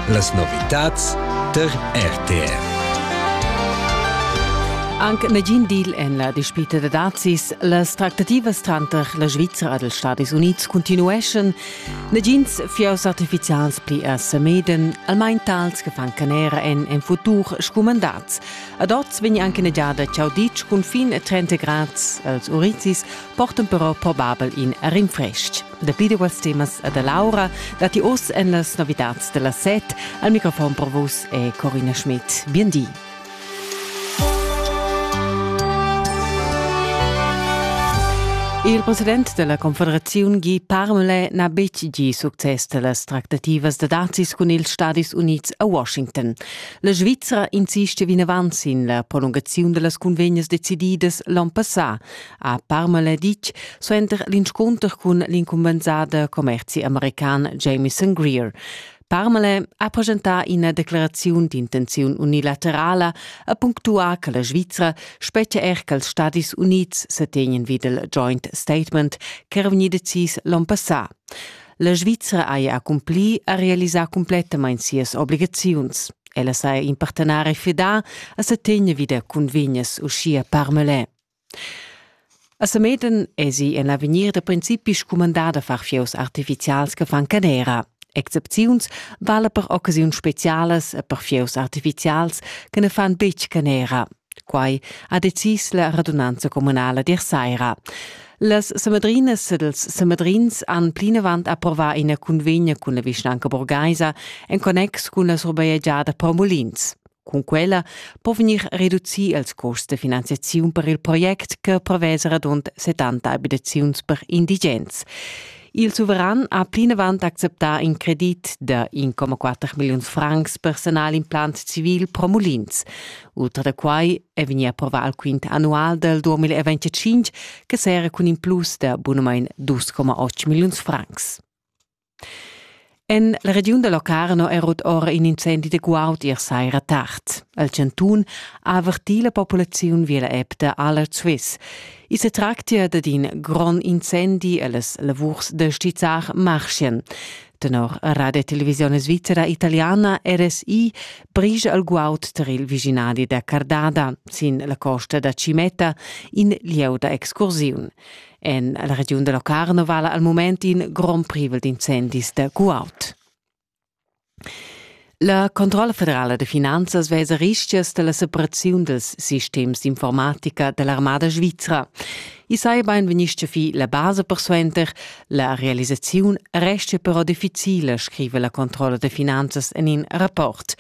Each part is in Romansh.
Las novitads tar RTR. Anc nagin deal en la dispita da dazis. Las tractativas tranter la Svizra ed els Stadis Unids continueschan. Nagins fieus artifizials pli a Semeden, almain tals che fan canera en en futur scumandats. Ad oz vegn anche negiada ciao ditg cun fin a 30 grads. Els urizis portan però probabel in rinfrestg. Dapi duas temas e da l'aura datti oz en las novitads da las set. Al microfon per vus è Corina Schmidt. Bien di. Il president della Confederazione Guy Parmelé n'ha betg gì success da las tractativas da dazis cun ils Stadis Unids a Washington. La Svizzera insiste vinavant sin la prolungaziun da las cunvegnas decididas l'onn passà, ha Parmala ditg suenter l'inscunter cun l'incumbensada commerzi american Jameson Greer. Parmale ha presentà ina declaraziun d'intenziun unilaterala e punctuà che la Svizra spetga er ch'als Stadis Unids se tegnen vid il joint statement ch'era vegnì decis l'onn passà. La Svizra haja accumpli a realisar cumplettamain sias obligaziuns. Ella saja in partenare fidà a se tegner vid cunvegnas uschia Parmale. A Sameden esi en l'avegnir da principi scumandà da far fieus artifizials che fan canera. Excepziuns vala per occasiuns specialas e per fieus artifizials che ne fan betg canera. Quai ha decis la radunanza communala dir saira. Las Samedrinas ed els Samedrins han plinavant approva ina convegna cun la vischnanca burgaisa en connex cun la surbajegiada Paumolins. Cun quella po vegnir reducì ils custs da finanziaziun per il project che prevesa radund 70 abitaziuns per indigens. Il suveran ha plinavant acceptà in credit da 1,4 milliun francs personal implant civil pro Mulins. Ultra da quai è vegnì approvà il quint annual dal 2025 che serra cun in plus da bunamain 2,8 milliuns francs. En la regiun da Locarno è rut ora in incendi da guaud ier saira tard. Il chantun ha avertì la populaziun via la app da Aller Swiss. I sa tractia dad in grond incendi e las lavurs da stizzar marschien. Tenor Radio Televisione Svizzera Italiana RSI brigia il guaud tar il vicinadi da Cardada, sin la costa da Cimeta, in lieu da excursiun. En la regiun da Locarno vala al mument in grond privel d'incendis da guaud. La Controlla federala de finanzas vesa rischias della separaziun dels sistems d'informatica dell'armada svizra. I sai bain venischia fi la base persuenter, la realisaziun restia però difficile, scrive la Controlla de finanzas en in rapport.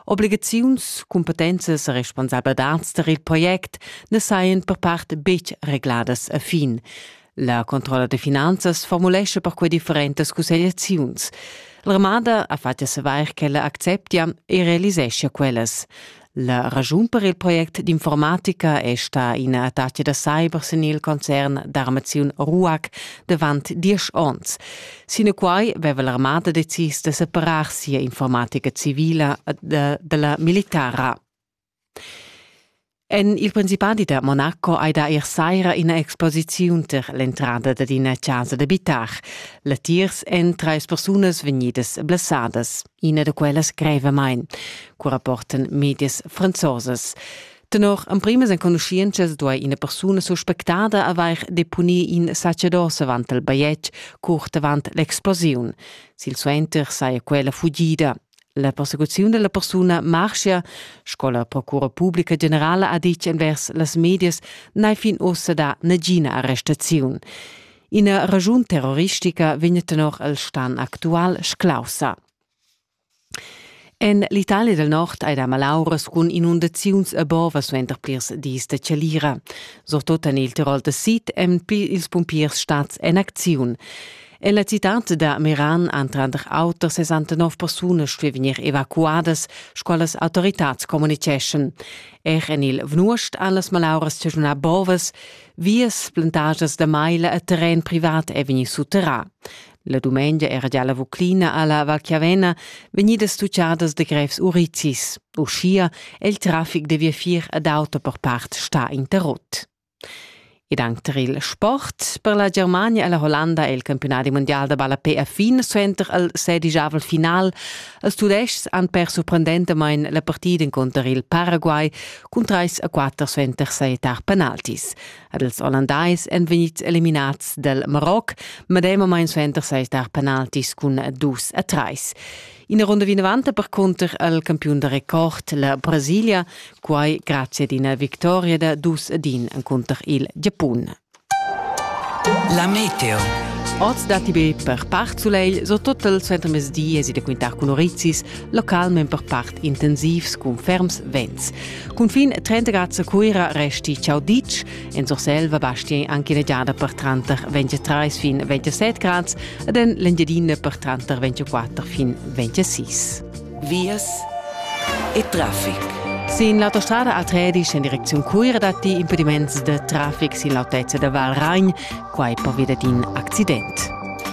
Obligaziuns, cumpetenzas e responsabladats tar il project na sajan per part betg regladas a fin. La controlla de finanzas formulescha per quei differentas cussegliaziuns. L'armada ha fatg savair ch'ella acceptia e realiseschia quellas. La ragiun per il project d'informatica è sta ina attacca da cyber sin il concern d'armaziun RUAC davant diesch onns. Sinaquai veva l'armada decis da separar sia informatica civila da, dalla militara. En il Principadi da Monaco hai da ir saira ina exposiziun ter l'entrada dad ina casa d'abitar. Latiers èn trais persunas vegnidas blessadas. Ina da quellas grevamain, cu rapportan medias franzosas. Tenor emprimas enconuschientschas duai ina persuna suspectada avair deponì in sacerdos avant il bajetg curt avant l'explosiun. Silsuenter saja quella fugida. La persecuziun della persuna marschia, sco la Procura Pubblica Generala ha ditg envers las medias, n'è fin ussa da nagina arrestaziun. Ina ragiun terroristica vegn tenor il stan actual sclaussa. En l'Italia del Nord ei da malauras cun inundaziuns e bova suenter plirs dis de chalira. Surtut en il Tirol de Sid ein ils pumpiers stats en acziun. En la citad da Meran han tranter auter 69 persunas stuì vegnir evacuadas, sco las autoritads communiceschan. Er en il Vnuost han las malauras stagiunà bovas, vias, plantagias da maila e terren privat è vegnì sutterrà. La dumengia era già la Vuclina alla Val Chiavena vegnidas tucciadas de grevs urizis. Uschia è il traffic de viafier ad auto per part sta interrott. Ed anche per il sport, per la Germania e la Hollanda è il campionat mondial da ballapé a fin suenter al sedigiavel final. Els tudestgs han per sorprendentamain la partida inconter il Paraguay cun 3 a 4 suenter sei tar penaltis. Ed ils Ollandais èn vegnids eliminads dal Maroc medemamain suenter sei tar penaltis cun dus a trais. Ina runda vinavant percunter al campiun da record, la Brasilia, quai grazie ad ina victoria da dus ad in encunter il Giapun. La meteo. Oz datti be per part sulegl, so total suenter mezdi es da quintar cun orizis, localment per part intensivs cun ferms vents. Cunfin 30 grad a Cuira resti ciao ditg. En Surselva basti anche una giada per tranter 23 fin 27 grad ed en l'Engiadina per tranter 24 fin 26. Vias e traffic. Sin l'autostrada a Tredisch in direczione Cuira datti impediments de traffic sin l'autezza da Val Ragn, quai per via d'in accident.